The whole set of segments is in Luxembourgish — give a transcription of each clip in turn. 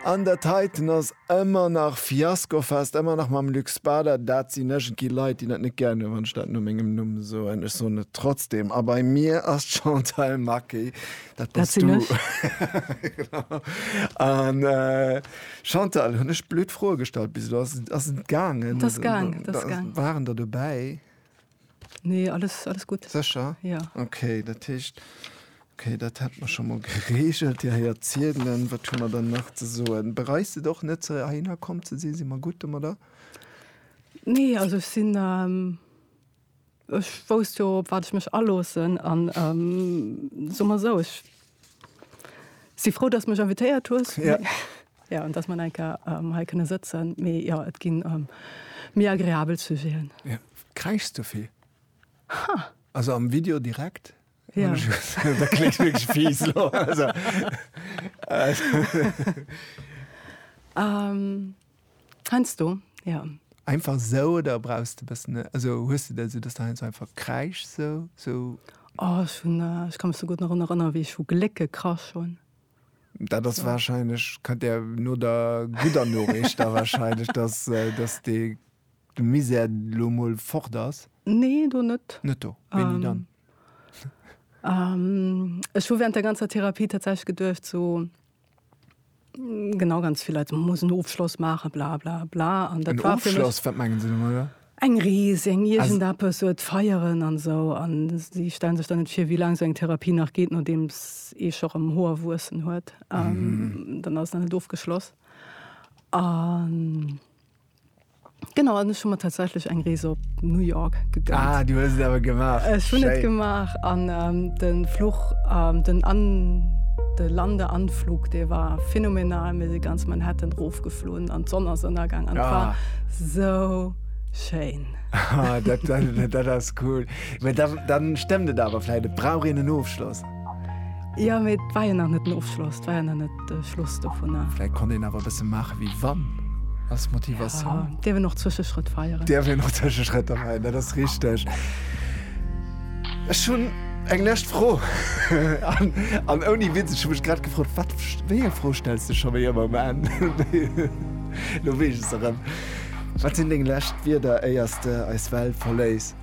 An der Titan ass ëmmer nach Fiaskofest, ëmmer nach mam Luc Spader. Dat sinn iergendwéi Leit, déi dat net gär hunn, wann ech dat no mengem Numm soen. Ech soen et trotzdeem. A bei mir ass d'Chantal Maquet. Dat bass du. Dat sinn ech. An Chantal, hunn ech blöd Froe gestallt bis elo? Ass et gaangen? Et ass gaangen. Waren der dobäi? Nee, alles, alles gutt. Sécher? Ja. Okay, dat heescht, okay, dat hätte mer scho mol geregelt. Dir héiert ziedelen. Wat hu mer dann nach ze soen? Bereist et och net, ze heihinner komm ze sinn? Si mer gutt domadder? Nee, also ech sinn, ähm, ech wousst jo, op wat ech mech aloossen an, ähm, soe mer esou, ech Si frou dass mech invitéiert hues jo an dass man enker hei kënne sëtzen mee jo et ginn am méi agreabel Sujeten. Ja. Kräichs du vill? Ha. Also am Video direkt? Ja. Dat kléngt wierklech fies elo. Also. Ähm. Heinsdo, jo. Einfach esou oder brauchs de e bëssen, also hues de dat esou, dass de heinsdo einfach kräischs esou, esou? Oh, ech hunn, ech ka mech souguer nach drun erënneren, wéi ech vu Gléck gekrasch hunn. Dat ass wahrscheinlech, kënnt där no der gudder Noriicht da wahrscheinlech, dass, dass dee, de Misär elo emol fort ass. Nee, do net. Net do. Wéini dann? Ech hu während der ganzer Therapie tatsächlech geduecht, esou. Genau, ganz vill Leit muss en Ofschloss maachen, bla bla bla. An dat war fir mech. Wat mengen se domadder? Eng Rees, eng iergend eppes, et feieren an esou. An si stellen sech dann net vir, wéi laang esou eng Therapie nach geet, nodeems ee scho rëm Hoer wuessen huet. Dann ass et nach net ofgeschloss. An. Genau an ech hun mer tatsächlich eng Rees op New York gegönnt. Ah, du hues et awer gemaach. Ech hun et gemaach an ähm, den Fluch ähm, den an de Lande Anflug dee war phänomenal. Mir si ganz Manhattan rofgeflunn an d'Sonn ass ënnergang an et war Ah. sou schéin. Ah, dat, dat, dat ass cool. Mä dann, dann stemmt et awer vläit, et brauch een en Ofschloss. Ja mee et war jo nach net den Ofschloss, et war jo nach net de Schluss dovunner. Vläit konnt een awer e bësse maache wéi wann, als Motivatioun. Ja, dierf een och Zwëscheschrëtt feieren. Dierf een och Zwëscheschrëtter feieren, dat ass richteg. Ech hunn eng lescht Fro. An, an ouni Witz, ech hu mech grad gefrot, wat, wéi eng Fro stells de scho wéi ëmmer um Enn? Elo weess ech se erëm. Wat sinn deng lescht Wierder, éiers de eis Welt verléiss?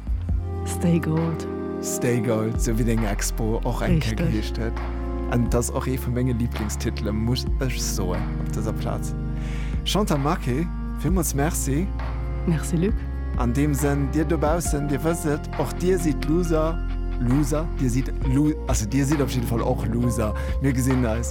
Stay Gold. Stay Gold, sou wéi deng Expo och eng Kéier geheescht huet. An et ass och ee vu menge Liblingstitele muss ech soen op dëser Plaz. Chantal Marqué, villmools Merci. Merci Luc. An deem Sënn, Dir dobaussen, Dir wësst et, och Dir sidd d'Loser, Loser? Dir sidd Lo, also Dir sidd op jidde Fall och Loser. Mir gesinn eis.